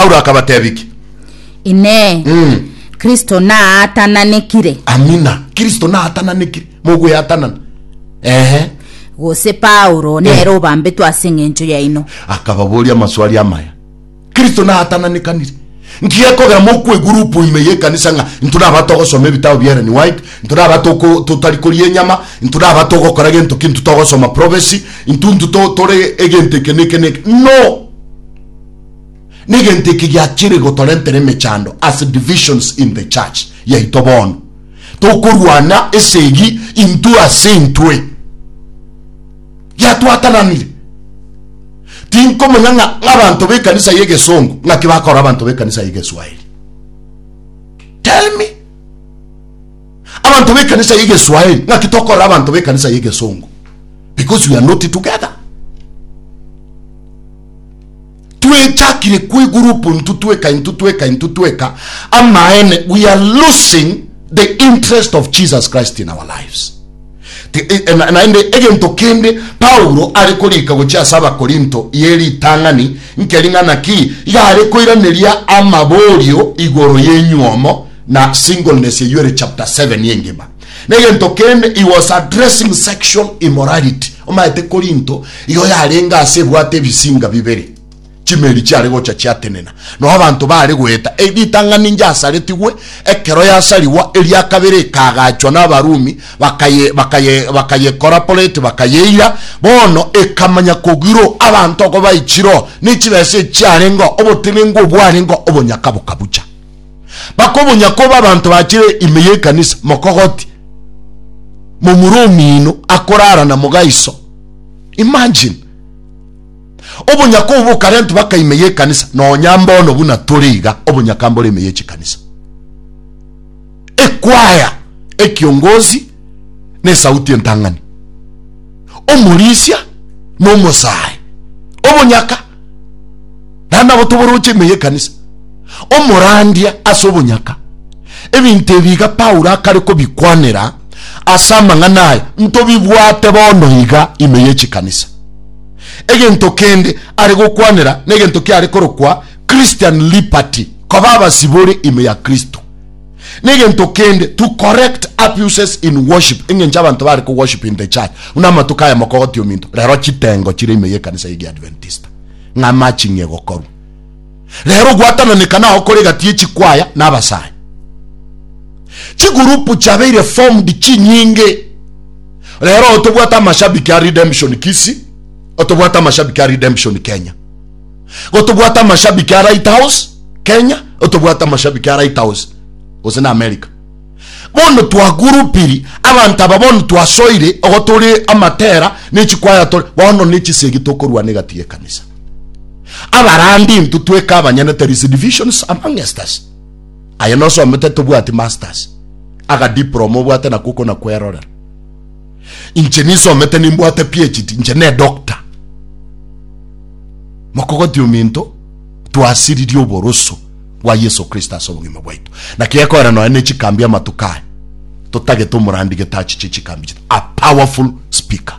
Paulo akabatebia ki? Inee, Mm. Kristo naatananekire? Amina. Kristo naatananekire. Mogweatanana. Ehe. Gose Paulo nere obambetwe ase eng'encho yaino? akababoria amaswali amaya kristo naatananekanire ngiye kogera mokwe gurupu ime yekanisa ng'a nturaba togosoma ebitabo bia Ellen White nturaba toko- totari koria enyama nturaba togokora gento ki ntu togosoma prophecy intuntu to- tore egento eke neke neke no Negento eke giachire gotorentera emechando ase divisions in the church yaito bono. Tokorwana esegi intwe ase intwe. Giatwatananire. Tinkomanya ng'a abanto b'ekanisa y'egesongo ng'aki bakora abanto b'ekanisa y'egeswahili. Tell me. Abanto b'ekanisa y'egeswahili ng'aki tokora abanto b'ekanisa y'egesongo because we are not together. Twechakire kwe group intwe tweka intwe tweka intwe tweka amaene we are losing the interest of Jesus Christ in our lives naende egento kende paulo are korika gochia ase abakorinto ye ritang'ani nkering'ana ki iga are koiraneria amaborio igoro y'enyuomo na singleness eyio ere chapter 7 engima Negento kende he was addressing sexual immorality omaete Korinto igo yarenge ase ebwate ebisinga bibere chimeri chiare gocha chiatenena no abanto baare goeta e ritang'ani njasaretigwe ekero yasarigwa eria kabere ekagachwa na Abarumi bakaye bakaye bakaye corporate bakayeira bono ekamanya kogiro abanto okobaichiro ne chibese chiarengo obotenengo obwarengo obonyaka bokabucha bakobunya koba abanto bachire ime y'ekanisa mokogoti momura omino akorara na mogaiso imagine obunyaka obo bokarentwa baka ime y'ekanisa nonya mbono buna tore iga obunyaka mbore ime y'echikanisa ekwaya ekiongozi na esauti entang'ani omorisia na omosae obonyaka naende nabo toboroche ime y'ekanisa omorandia ase obonyaka ebinto ebi iga paulo akare kobikwanera ase amang'ana aya ntobibwate bono iga ime y'echikanisa egento kende are gokwanera negento kiare korokwa christian liberty koba abasibore ime ya kristo negento kende to correct abuses in worship engencho abanto bare ko worship in the church buna amatuko aya mokogoti ominto rero chitengo chire ime yekanisa ye Adventista ng'a matching egokorwa rero gwatananeka na okore gati ye chikwaya na abasayi chigurupu chabeire formed chinyinge rero otobwata amashabiki a redemption kisi otobwata amashabiki a redemption Kenya Igo tobwate amashabiki a Lighthouse Kenya, igo tobwate amashabiki a Lighthouse gose na America. Bono twagurupiri abanto aba bono twasoire igo tore amatera ne chikwaya tore bono ne chisegi tokorwana egati y'ekanisa. Abarandi intwe tweka abanyene there is divisions amongst us. Aye nosomete tobwati masters aga diploma obwate nako okona kwerorera. inche nisomete nimbwate phd inche ne doctor mokogoti ominto twasiririe oboroso bwa yesu kristo ase obogima bwaito naki gekorera nonya ne chikambi amatuko aya totagete omorandi getachiche chikambi chito a powerful speaker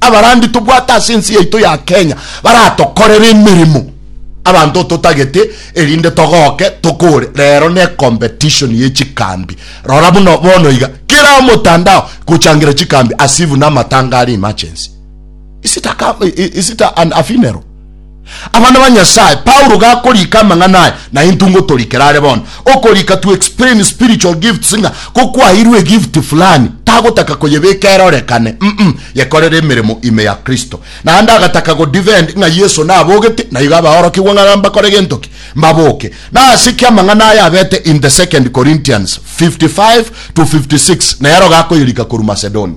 abarandi tobwate ase ense yaito ya Kenya baratokorere emeremo abanto ototagete erinde togoke tokore rero ne competition ye chikambi rora buno bono iga kera motandao kuchangira chikambi asivu na matanga ari emergency is it a, is it a, an, a funeral Abana ba Nyasae, Paulo gakoriika amang'ana aya, na intwe ngotorikera are bono. Okorika to explain spiritual gifts ng'a kokwaeirwe egift fulani, tagotaka koyebeka erorekane, mm yekorere emeremo ime ya Kristo. Naende agataka godefend ng'a Yeso nabogete, naigo abaorokigwa ng'a mbakore gento ki? Mbaboke. Nase ki amang'ana aya abete in the Second Corinthians 55-56 nero gakoyorika korwa Macedonia?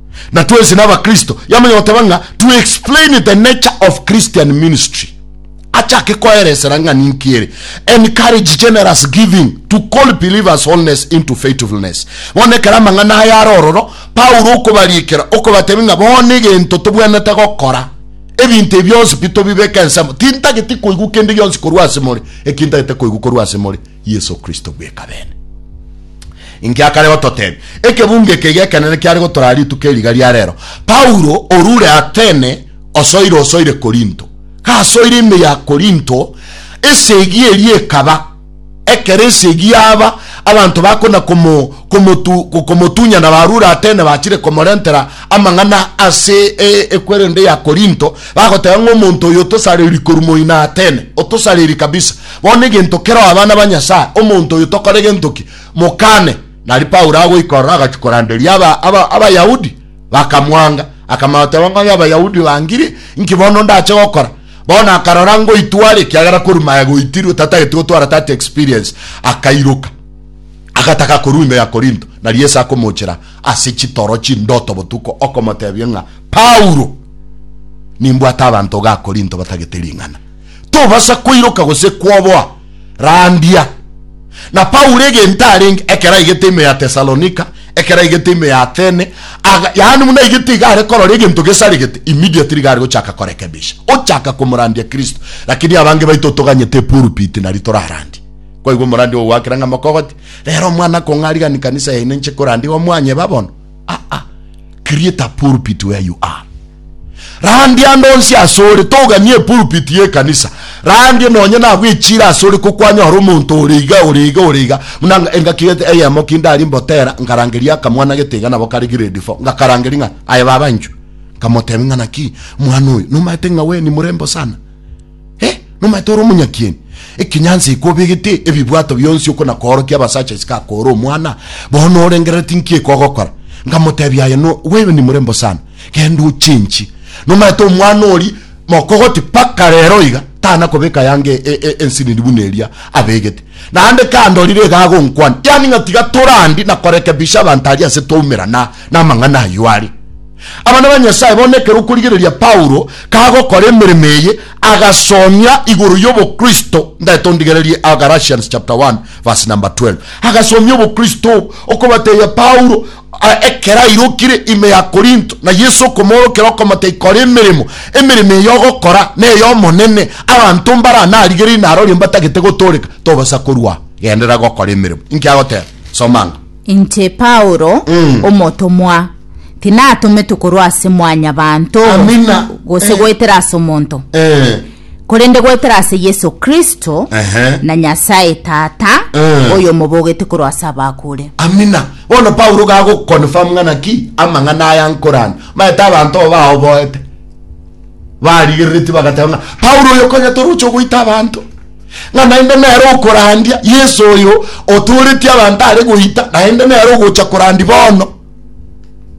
na twensi n'Abakristo, yamanya goteba ng'a to explain the nature of Christian ministry, achake koeresera ng'a ninki ere encourage generous giving to call believers wholeness into faithfulness. Bono ekero amang'ana aya are ororo, Paulo okobariikera okobatebia ng'a bono egento tobwenerete gokora, ebinto ebi bionsi pi tobibeke ensemo. Tintageti koigwa kende gionsi korwa ase more, eki ntagete koigwa korwa ase more. Yeso Kristo bw'ekabene. Inki akare gototebia? Ekebungo eke gekenene kiare gotoraa rituko eri iga ria rero. Paulo, orure Atene, osoire osoire Korinto. Kasoire ime ya Korinto, esegi eria ekaba. Ekero esegi yaba, abanto bakona komo, komotu, komotunyana barure Atene bachire komorentera amang'ana ase e, ekwerende ya Korinto, bagoteba ng'a omonto oyo otosareri korwa moino Atene, otosareri kabisa. Bono egento keroo abana ba Nyasae, omonto oyo tokore gento ki? Mokane. Nari Paulo agoika ororo agachia koranderia Abayahudi, bakamwanga. Akabateeba, Ng'o oyo Abayahudi bangire? Inki bono ndache gokora? Bono akarora ngoitwa are, ekiagera korwa maya goitirwe, tatageti gotwara that experience. Akairoka, agataka korwa ingo ya Korinto, na Yeso akomochera ase chitoro chindoto botuko, okomoteebia ng'a, Paulo, nimbwate abanto iga Korinto batagete ring'ana. tobasa koiroka gose kwoboa, randia. Na Paulo egento arenge, ekero aigete ime ya Thessalonica, ekero aigete ime ya Athene, aga, yaani buna aigete iga are korora egento gesaregete, immediately iga are gochaka korekebisha, ochaka komorandia Kristo. Lakini abange baito toganyete epulpit nari torarandie. Kwaigwa omorandia ogoakera ng'a mokogoti, rero omwana akong'a riga ni kanisa yaino inche korandia iga omwanyeba bono? Ah-ah. Create a pulpit where you are. Randia ande onsi asore, toganie epulpiti y'ekanisa, randia nonye nagwechire asore ko kwanyora omonto ore iga, ore iga, ore iga. Buna engaki ete eyemo kindari mbotera, nkarangeria akamwana getiga nabo kare grade four, ngakarangeria ng'a aye baba inchwe. Nkamotebia ng'a naki, mwana oyo, nomanyete ng'a wee nimurembo sana. Eh, nomaete ore omonyakieni. Ekenyansa iko obegete ebibwato bionsi oko nakoorokia abasacha isiko akoora omwana, bono orengerereti nki eke ogokora? Nkamotebia aye no, wewe ni murembo sana. Genda ochenchi. Nomaete omwana ori mokogoti paka rero iga tana kobeka yange e- e- e- ensinini buna eria abegete. Naende kandorire iga agonkwana. Yaani ng'a tiga torandi na korekebisha abanto aria ase twaumera na, na amang'ana ayio are. Abana ba Nyasae bono ekero okorigereria Paulo kagokora emeremo eye agasomia igoro y'obokristo, ndaete ondigererie a Galatians chapter 1 verse number 12. Agasomia obokristo obo okobatebia Paulo ekero airokire ime ya Korinto na Yesu okomoorokera okomotebia kora emeremo, emeremo eye ogokora ney'Omonene, abanto mbara narigereiri narorie mbatagete gotooreka, tobasa korwa, genderera gokora emeremo. Inki agoteba? Somanga. Inche Paulo, Mm. omotomwa, tinatometwe korwa ase mwanyabanto, Amina. gose Eh. goetera ase omonto, Eh, korende goetera ase Yeso Kristo Ehe. na Nyasae Tata, Eh. oyo omobogete korwa ase abakure. amina bono paulo gagokonfam ng'ana ki amang'ana aya nkorana maete abanto abo baoboete barigerereti bagateba ng'a paulo oyo konya toroche ogoita abanto ng'a naende nere okorandia Yeso oyo otooretie abanto are goita, naende nere ogocha korandia bono.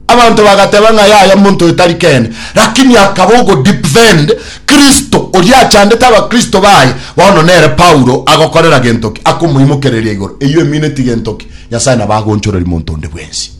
Abanto bagateba ng'a yaya monto oyo tari kene, lakini akaba ogodefend Kristo oria achandete abakristo baye. Bono nere Paulo agokorera gentoki? Akomoimokereria igoro. Eyio emino eti gentoki? Nyasae nabo agonchoreri monto onde bwensi.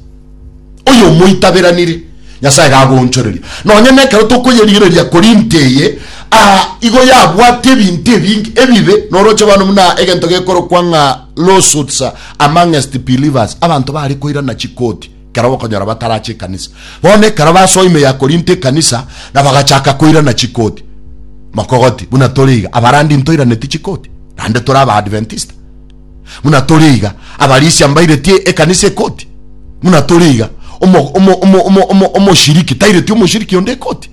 oyo omoitaberanire, Nyasae gagoonchoreria. Nonya nekero tokoyerigereria Korinto eye, aa igo yabwate ebinto ebinge ebibe noroche buna buna egento gekorokwa ng'a lawsuits amongst believers, abanto bare koirana chikoti ekero okonyora batarache ekanisa. Bono ekero basoa ime ya Korinto ekanisa na bagachaka koirana chikoti. Mokogoti, buna tore iga, abarandi ntoiraneti chikoti? Naende tore Abaadventista. Muna tore iga, abarisia mbairetie ekanisa ekoti? Muna tore iga, omoshiriki tairetie omoshiriki onde ekoti?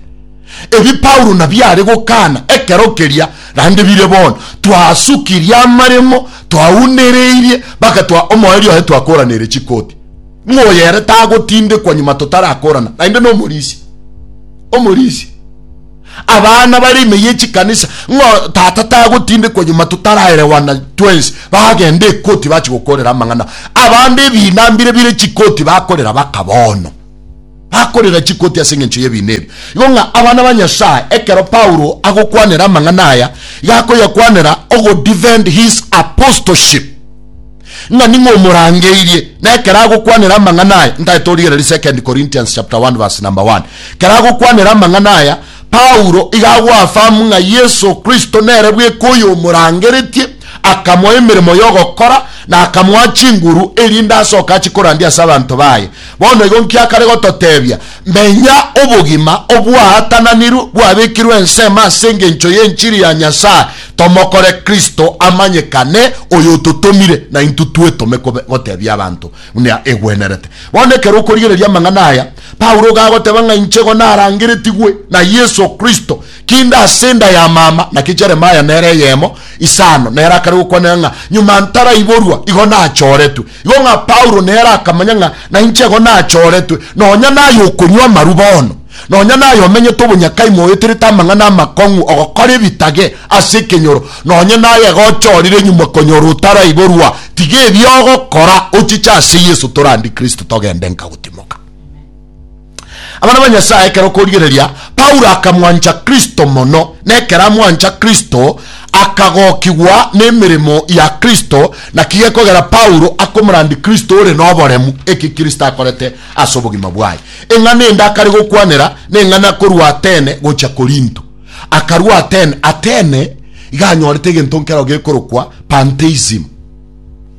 Ebi Paulo nabiare gokana ekero keria, naende bire bono. Twasukirie amaremo, twaunereirie, bagatwa omoerio aye twakoraneire chikoti. Ng'oyo ere tagotindekwa nyuma totarakorana, naende nomorisia. Omorisia. Abana bare ime y'echikanisa ng'o tata tagotindekwa nyuma totaraerewana twensi bagenda ekoti bachi gokorera amang'ana abande ebiina mbire bire chikoti bakorera baka bono bakorera chikoti ase eng'encho y'ebiina ebi igo ng'a abana ba Nyasaye ekero Paulo agokwanera amang'ana aya iga akoyakwanera ogodefend his apostleship ng'a ning'o omorangeirie, na ekero agokwanera amang'ana aya, ntagete origererie Second Corinthians chapter 1 verse number 1. Ekero agokwanera amang'ana aya, Paulo iga agoafamu ng'a Yeso Kristo nere bweka oyo omorangeretie, akamoa emeremo y'ogokora, na akamoa chinguru, erinde asoke achikorandie ase abanto baye. Bono igo nkiakare gototebia, Menya obogima obwaatananirwe bwabekirwe ensemo ase engencho y'enchiri ya Nyasae, tomokore Kristo amanyekane, oyototomire, na intwe twetome kobe gotebia abanto buna egwenerete. Bono ekero okorigereria amang'ana aya, Paulo iga agoteba ng'a inche igo narangeretigwe na Yeso Kristo, kinde ase enda ya mama, naki Jeremia nere eyemo isano nere akare gokwanera ng'a, Nyuma ntaraiborwa, igo nachoretwe. Igo ng'a Paulo nere akamanya ng'a nainche igo nachoretwe, nonya naye okonywa amaru bono, nonya naye omenyete obonyakaimo oeterete amang'ana amakong'u ogokora ebitage ase ekenyoro, nonya naye igo ochorire nyuma konyora otaraiborwa, tiga ebiogokora ochiche ase Yeso, torande Kristo togende nkagotimoka. Abana ba Nyasae, ekero korigereria, Paulo akamwancha Kristo mono, na ekero amwancha Kristo, akagokigwa nemeremo ya Kristo. Naki gekogera Paulo akomorandia Kristo ore noboremu, eki Kristo akorete ase obogima bwaye. Eng'ana ende akare gokwanera neng'ana korwa Atene gochia Korinto. Akarua Atene, Atene iga anyorete egento nkero gekorokwa pantheism.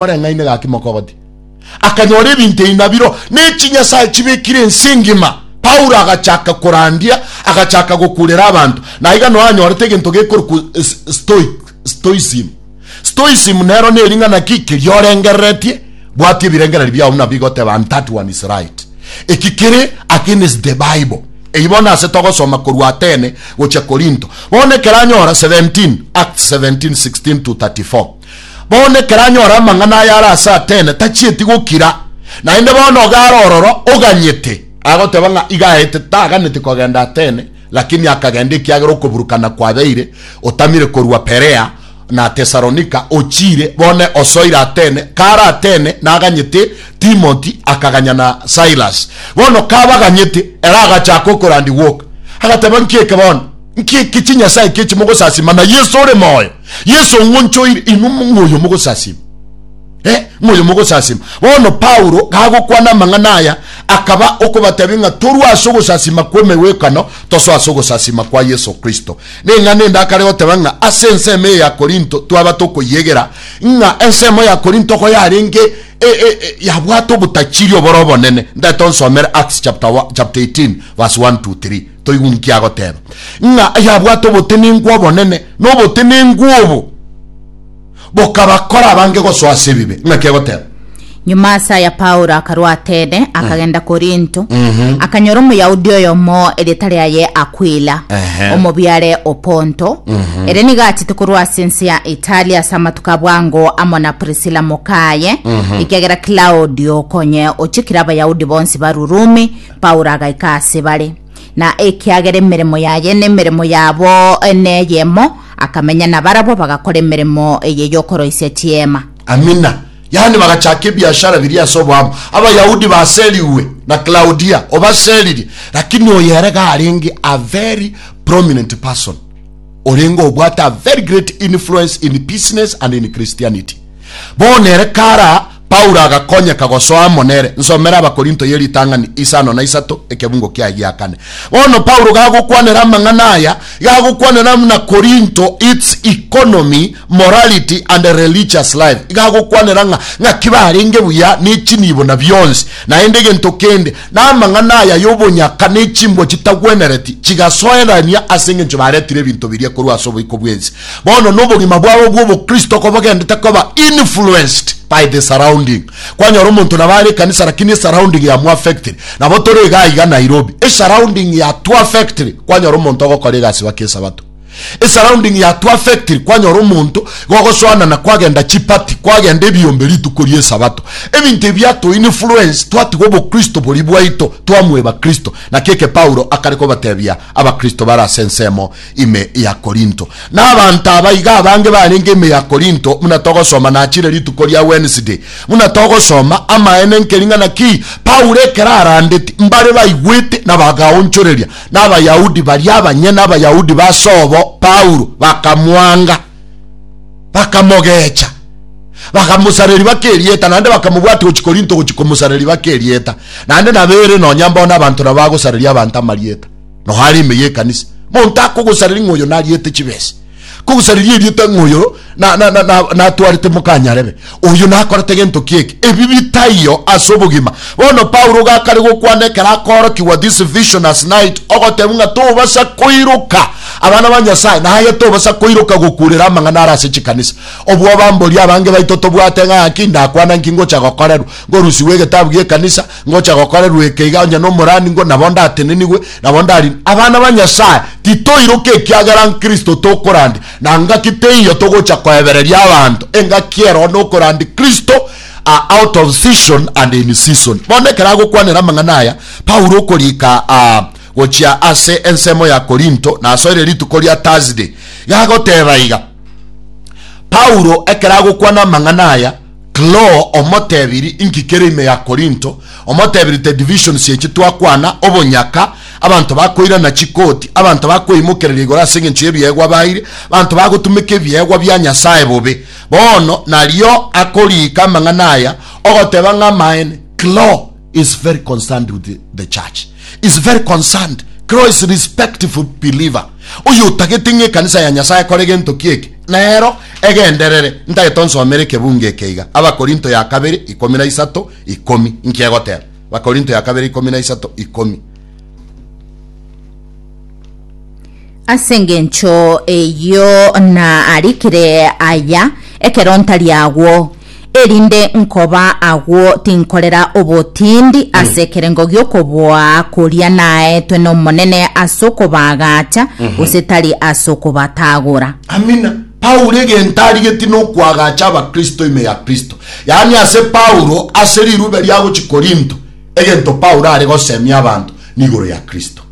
Oreng'aine gaki mokogoti, akanyora ebinto ebi nabiro nechinyasae chibekire ense engima. Paulo agachaka korandia, agachaka gokurera abanto, na aiga nonya anyorete egento gekorokwa stoic, stoicism. Stoicism nero nering'ana ki keria orengereretie, bwatia ebirengererio biao buna bigoteba and that one is right. Eki kere against the Bible. Eyi bono ase togosoma korwa Atene gochia Korinto. Bono ekero anyora 17 Acts 17:16-34. Bono ekero anyora amang'ana aya are ase Atene, tachieti gokira, naende bono iga are ororo oganyete. Agoteba ng'a iga aete, taganeti kogenda Atene, lakini akagenda ekiagera okoburukana kwabeire, otamire korwa Perea na Tesalonika, ochiire bono osoire Atene. Kare Atene naganyete Timoti, akaganya na Silas. Bono kabaganyete, ere agachaka okorandia gwoka, agateba, Nki eke bono? Nki eke chinyasae echi echimogosasima na Yeso ore moyo? Yeso ong'onchoire inwe ng'oyo mogosasima eh, ng'oyo mogosasima. Bono Paulo gagokwana amang'ana aya akaba okobatabia ng'a torwe ase ogosasima kw'emegwekano tosoe ase ogosasima kwa Yeso Kristo. Neng'ana ende akare goteba ng'a ase ensemo eye ya Korinto twaba tokoyegera ng'a ensemo ya Korinto igo yarenge e, e, e, yabwate obotachiri obore obonene. Ndete onsomere Acts chapter 18 verse 1 to 3. Toigwe inki agoteba, ng'a ayabwate obotenenku obonene nobotenenku obo bokabakora abange gosoa ase ebibe. Naki agoteba. Nyuma ase aya Paulo akarua Atene, mm. akagenda Korinto, mm-hmm. akanyora Omoyahudi oyomo erieta riaye Akwila, omobiare o Ponto. Mm-hmm. Ere nigo achete korwa ase ense ya Italia ase amatuko a bwango amo na Prisila mokaye, mm-hmm. ekiagera Claudio konye ochikire Abayahudi bonsi barwa Rumi Paulo agaika ase bare, na ekiagera emeremo yaye na emeremo yabo neyemo, akamenya nabarabwo bagakora emeremo eye y'okoroisia chiema. Amina. Yaani bagachaka ebiashara biria ase oboamo. Abayahudi baserigwe na Claudia, obaseririe, lakini oyo ere garenge a very prominent person, orenge obwate a very great influence in business and in Christianity. Bono ere kara Paulo agakonyeka gosoa amo nere. Nsomere Abakorinto ye ritang'ani isano na isato, ekebungo kiaye gia kane. Bono Paulo gagokwanera amang'ana aya, gagokwanera buna Korinto, its economy, morality, and religious life. Gagokwanera ng'a ng'aki barenge buya ne chinibuna bionsi. Naende egento kende, namang'ana aya y'obonyaka ne chimbwa chitagwenereti chigasoerania ase engencho baretire ebinto biria korwa ase oboiko bwensi. Bono nobogima bwabo bw'obokristo kobogendete koba influenced by the surrounding. Kwanyora omonto nabo are ekanisa lakini esurrounding yamoaffectire. Nabo tore igaa iga Nairobi, esurrounding yatuaffectire kwanyora omonto ogokora egasi baka esabato. Esurrounding yatuaffectire kwanyora omonto gogosoanana kwagenda chiparty, kwagenda ebiombe rituko ria esabato. Ebinto ebi biato influence twatiga obokristo boria bwaito twamoeba Kristo. Naki eke Paulo akare kobatebia abakristo bare ase ensemo ime ya Korinto. Na abanto aba iga abange barenge ime ya Korinto buna togosoma na chire rituko ria Wednesday. Buna togosoma, amaene nkering'ana ki Paulo ekero arandeti, mbare baigwete na bagaonchoreria, na Abayahudi baria abanyene Abayahudi basobo Paulo bakamwanga, bakamogecha, bakamosareri bake erieta, naende bakamobwatia gochia Korinto gochia komosareri bake erieta, naende nabo ere nonya bono abanto nabo bagosareria abanto amarieta. Nogo are ime y'ekanisa. Monto akogosareri ng'a oyo nariete chibesa, kogosareria erieta ng'a oyo na- na- na- na- natwarete mokanyarebe, oyo nakorete gento ki'eki. Ebi bitaiyo ase obogima. Bono Paulo gakare gokwana ekero akoorokigwa this vision as night, ogotebiwa ng'a tobasa koiroka abana ba Nyasae, na aye tobasa koiroka gokuurera amang'ana are ase chikanisa. Obwabambori abange baito tobwate ng'aki, ndakwana nki ngocha gokorerwa? Ngorusigwa egetabu gi'ekanisa? Ngocha gokorerwa eke iga onye nomorani ngwo nabo ndatenenigwe, nabo ndari abana ba Nyasae. Titoiroka ekiagera nkristo tokorandia, na ngaki teiyo togocha koebereria abanto. Engaki ero nokorandia Kristo are out of season and in season. Bono ekero agokwanera amang'ana aya, Paulo okorika gochia ase ensemo ya Korinto, na asoire rituko ria Thursday, iga agoteba iga, Paulo ekero agokwana amang'ana aya, Chloe omotebiri inki kere ime ya Korinto? Omotebiri the divisions echi twakwana, obonyaka, abanto bakoirana chikoti, abanto bakweimokereria igoro ase engencho y'ebiegwa baire, abanto bagotumeka ebiegwa bia Nyasae bobe. Bono nario akoriika amang'ana aya, ogoteba ng'a amaene. Chloe. is very concerned with the, the church is very concerned kero is respectful believer oyo otagete ng'a ekanisa ya nyasaye kore gento kieke nero egenderere ntagete onsomere ekebunge eke iga abakorinto ya kabere ikomi na isato ikomi inki egoteba bakorinto ya kabere ikomi na isato ikomi Ase engencho eyio naarikire aya ekeronta ri'agwo, erinde nkoba agwo tinkorera obotindi ase ekerengo gi'okoboa koria naetwe n'Omonene ase okobaagacha, gose tari ase okobatagora. Amina. Paulo egento arigetie nokoagacha abakristo ime ya Kristo. Yaani ase Paulo ase rirube riagochia Korinto, Egento Paulo are gosemia abanto nigoro ya Kristo,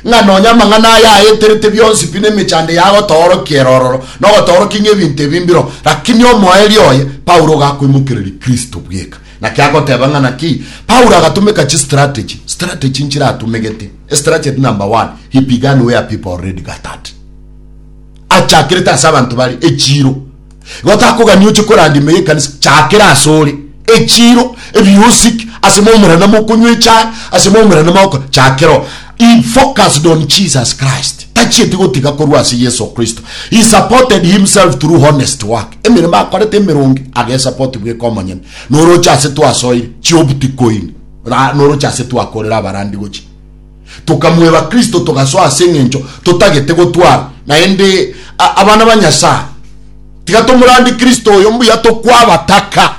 ng'a nonya amang'ana aya aeterete bionsi pi nemechando ya gotoorokia ere ororo na ogotoorokia ng'a ebinto ebi mbiroo, rakini omoerio oye Paulo gakwemokereria Kristo bweka. Naki agoteba ng'a naki Paulo agatomeka chistrategy, strategy nchiratumegete, estrategy number one, he began where people already got at. Achakerete ase abanto bare echiiro. Igo takogania oche koranda ime y'ekanisa, chakera asore echiiro ebiosik ase maumorana mokonywa echae, ase maumorana magokora, chakera o He focused on Jesus Christ. Tachieti gotiga korwa ase Yeso Kristo. He supported himself through honest work. Emeremo akorete emeronge, agesupport bweka omonyene. Noroche ase twasoire, chiobuti koini, ra noroche ase twakorera abarandi gochi. tokamweba Kristo togasoa ase eng'encho totagete gotwara naende abana ba Nyasae. Tiga tomorande Kristo oyo mbuya tokwabataka,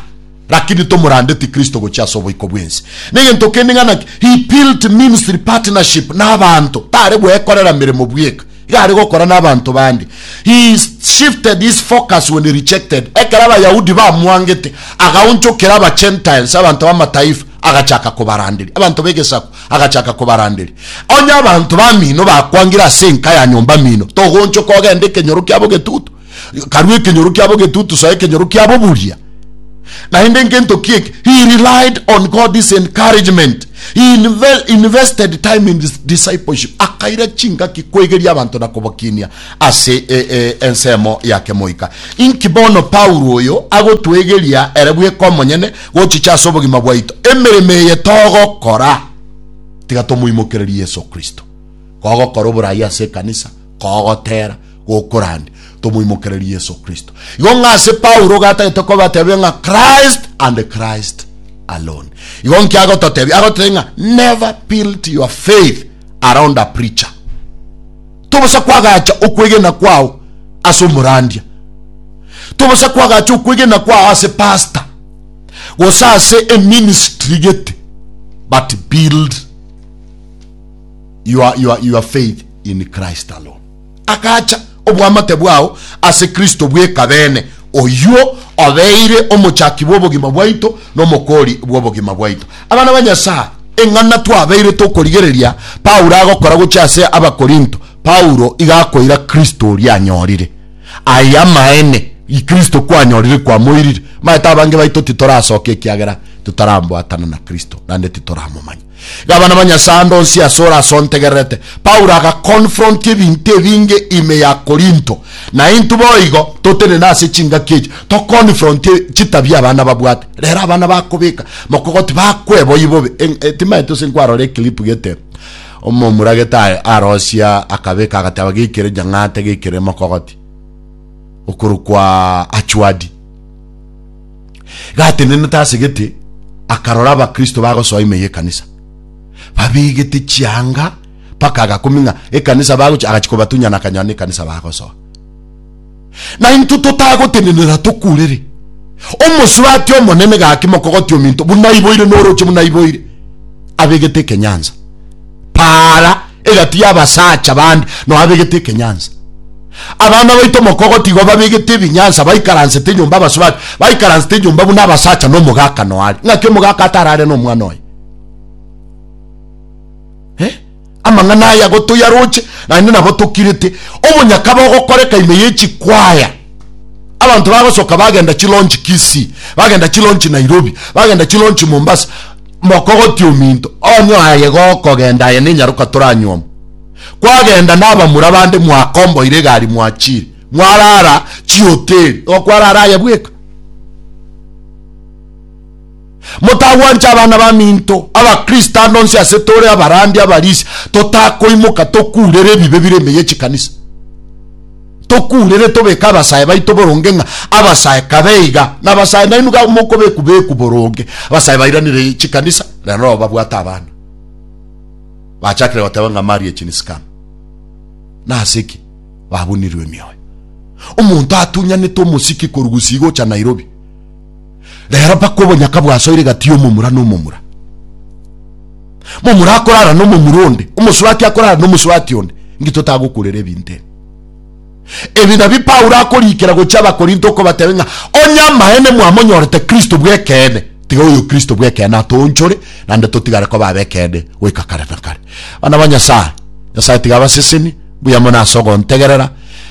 rakini tomorandeti Kristo gochia ase oboiko bwensi. Negento kende ng'a naki he built ministry partnership n'abanto, tare gwekorera meremo bweka, iga are gokora n'abanto bande. He shifted his focus when rejected. Ekero Abayahudi bamwangete, agaonchokera Abagentiles, abanto b'Amataifa. agachaka kobaranderia. Abanto b'egesaku agachaka kobaranderia. Onye abanto bamino bakwangire ase enka ya nyomba mino, togoonchoka ogende ekenyoro kiabo getutu. Karue ekenyoro kiabo getutu, soa ekenyoro kiabo buya. Naende ngento ki eke? He relied on God's encouragement. He inve- invested time in dis- discipleship. Akaira chingaki kwegeria abanto na kobokinia ase e, e, ensemo yake moika. Inki bono Paulo oyo agotwegeria ere bweka omonyene gochicha ase obogima bwaito, emeremo eye togokora, tiga tomoimokererie Yeso Kristo. Kogokora oboraai ase ekanisa, kogotera, gokorandi, tomoimokererie Yeso Kristo. Igo ng'a ase Paulo gatagete koba atebie ng'a Christ and Christ alone. Igo nki agototebia? Agototebia ng'a never build your faith around a preacher. Tobosa kwagacha okwegena kwao ase omorandia. Tobosa kwagacha okwegena kwao ase pastor gose ase eministry gete, but build your, your, your faith in Christ alone. Agacha oboamate bwao ase Kristo bw'ekabene Oyio obeire omochaki bw'obogima bwaito na omokori bw'obogima bwaito. Abana ba Nyasae, eng'ana twabeire tokorigereria Paulo agokora gochia ase Abakorinto, Paulo iga akoira Kristo oria anyorire. Aye amaene, Kristo kwanyorire kwamoirire. Maete abange baito titorasoka ekiagera titorambwatana na Kristo naende titoramomanya. Gavana ba Nyasande onsi ase ore ase ontegererete. Paulo agaconfrontia ebinto ebinge ime ya Korinto, na intwe boigo totenene ase chingaki echi, toconfrontie chitabia abana babwate. Rero abana bakobeka moko goti bakweboyia bobe. Timaeti gose nkwarora eclip gete omomura gete arosia akabeka agateba geikere Jang'ata geikere moko goti okorokwa Achuadi. gatenenete ase gete, akarora Abakristo bagosoa ime y'ekanisa babegete chianga mpaka agakumi ng'a ekanisa bagochi agachi kobatunyana akanyora n'ekanisa bagosoa. Na intwe totagotenenera tokurere omosubati omonene gaki mokogoti ominto buna aiboire n'oroche buna aiboire abegete ekenyansa para egati y'abasacha bande noabegete ekenyansa. Abana baito mokogo tigo babegete ebinyansa baikaransete enyomba abasubati, baikaransete enyomba buna abasacha n'omogaka noare. Ng'aki omogaka atarare n'omwana oye? Eh? Amang'ana aya go toyaroche, naende nabo tokirete. Obonyaka bogokoreka ime ye chikwaya. Abanto bagosoka bagenda chilonchi Kisii, bagenda chilonchi Nairobi, bagenda chilonchi Mombasa, mokogoti ominto, onye aye gokogenda aye nenyaroka toranyuoma. Kwagenda nabamura bande mwakomboire egari mwachire, mwarara chihoteri, igo kwarara aye bweka. Motagwancha abana baminto, abakristo ande onsi ase tore abarandi abarisia, totakoimoka tokurere ebibe bire emeye chikanisa. Tokuurere tobeke abasae baito boronge ng'a abasae kabe iga, na abasae nainwe ga mokobeku-beku boronge. Abasae bairanire chikanisa, na nabo babwate abana. Bachakire goteeba ng'a marriage needs come. Nase ki? Babunirwe emioyo. Omonto atunyanete omosiki korwa Gusii gocha Nairobi, rero mpaka obonyaka bwasoire gati y'omomura na omomura. Momura akorara na omomura onde, omosuati akorara na omosuati onde. Inki totagokuurera ebinto ebi? Ebi nabio Paulo akorikera gochia Abakorinto okobatebia ng'a onye amaene mwamonyorete Kristo bw'ekeene, tiga oyo Kristo bw'ekeene atoonchore, naende totigare koba ab'ekeene goika kare na kare. Abana ba Nyasae, Nyasae tiga abasesenie buya mono ase ogontegerera,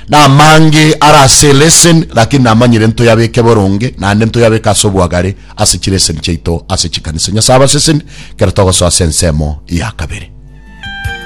na amange are ase eleseni, lakini namanyire ntoyabeke boronge, naende ntoyabeke ase oboagare ase chileseni chiaito ase chikanisa. Nyasae abasesenie ekero togosoa ase ensemo ya kabere.